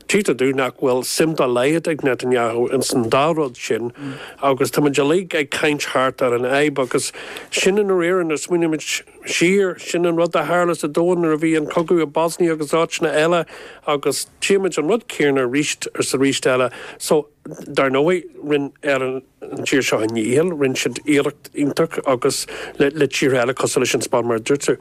Tchítear dúinn nach bhfuil suim dá laghad ag Netanyahu ins an dá rud sin agus táimid uilig ag caint thart ar an fhadhb agus sin i ndáiríre nuair a smaoinímid siar, sin an rud a tharla sa domhan nuair a bhí an cogadh i Bosnia agus áiteanna eile agus tchímid an rud céarna arís is arís eile so dar ndóigh rinn an tír seo a ndícheall, rinn siad iarracht iontach agus le tíortha eile cosúil leis an Spáinn mar a dúirt tú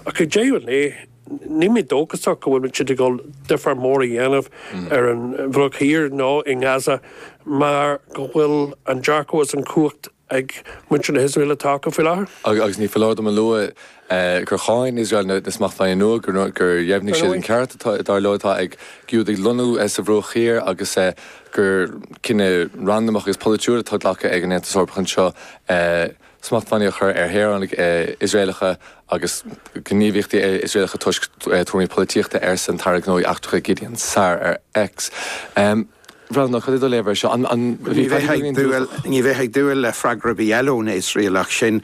ach ag deireadh an lae. Níl mé dóchasach go bhfuil siad ag dul difear mór a dhéanamh ar an Bhruach Thiar nó i nGaza mar go bhfuil an dearcadh is an chumhacht ag muintir na hIosraele atá acu faoi láthair. Agus ní foláir dom a lua gur cháin Iosrael na smachtbhannaí nua, gur dheimhnigh siad an ceart, dar leo, atá ag Giúdaigh lonnú sa Bhruach Thiar agus gur cinneadh randamach agus polaitiúil atá glactha ag an Aontas Eorpach anseo. smachtbhannaí a chur ar shaoránaigh Iosraelacha agus gníomhaíochtaí Iosraelacha toisc tuairimí polaitíochta, arsa an tAire Gnóthaí Eachtracha Gideon Saar ar X. A Bhreandáin, cad é do léamh air seo? Ní bheifeá ag dúil le freagra ar bith eile ó na hIosraelaigh sin.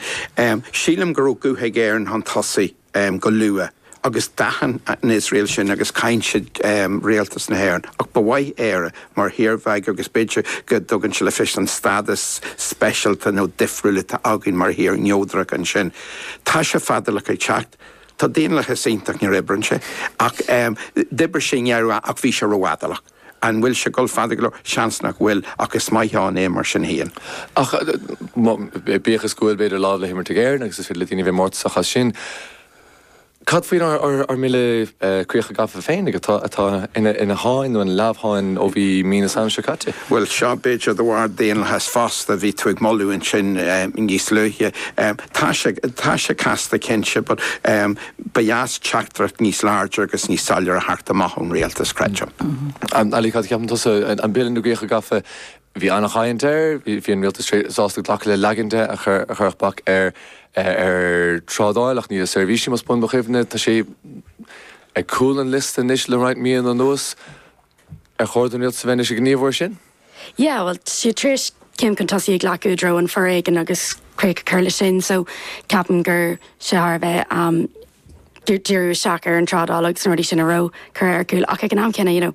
Sílim go raibh guth ag Éirinn chun tosaigh. go luath agus d'aithin an Iosrael sin agus cháin siad Rialtas na hÉireann ach ba mhaith Éire mar thír bheag agus b'fhéidir go dtugann sé le fios an stádas speisialta nó difriúil atá againn mar thír neodrach ansin. Tá sé fadálach ag teacht. Tá daonlathas iontach, nuair a oibríonn sé ach d'oibrigh sé i ndeireadh ach bhí sé rófhadálach. An bhfuil sé ag dul fada go leor? Seans nach bhfuil, ach is maith ann é mar sin féin. Ach bíodh is go bhfuil, b'fhéidir, lámh le himirt ag Éirinn, agus is féidir le daoine a bheith mórtasach as sin, cad faoinár mbille críocha gafa féin atá ina sháinn, nó ina leamhsháinn, ó bhí mí na Samhna seo caite? Bhuel, so b'fhéidir de bharr daonlathas fosta, bhí tú ag moladh ansin níos luaithe. Tá sé casta cinnte. Ba dheas teachtaireacht níos láidre agus níos soiléire a theacht amach ón Rialtas, creidim. Ali, cad a cheapann tusa? An Bille na gCríocha Gafa, bhí an-chaint air, bhí an Rialtas sásta glacadh le leagan de a chuirfeadh bac ar thrádáil ach ní le seirbhísí, más buan mo chuimhne. Tá sé ar cúl an liosta anois le roinnt míonna anuas. Ar chóir don Rialtas a bheith anois ag gníomhú air sin? yeah well tá siad tar éis céim chun tosaigh a ghlacadh i dtreo an foréigean agus críoch a chur leis sin so ceapaim gur, tá sé thar a bheith um, díriú isteach ar an trádáil agus na rudaí sin a raibh curtha ar cúl ach ag an am céanna you know,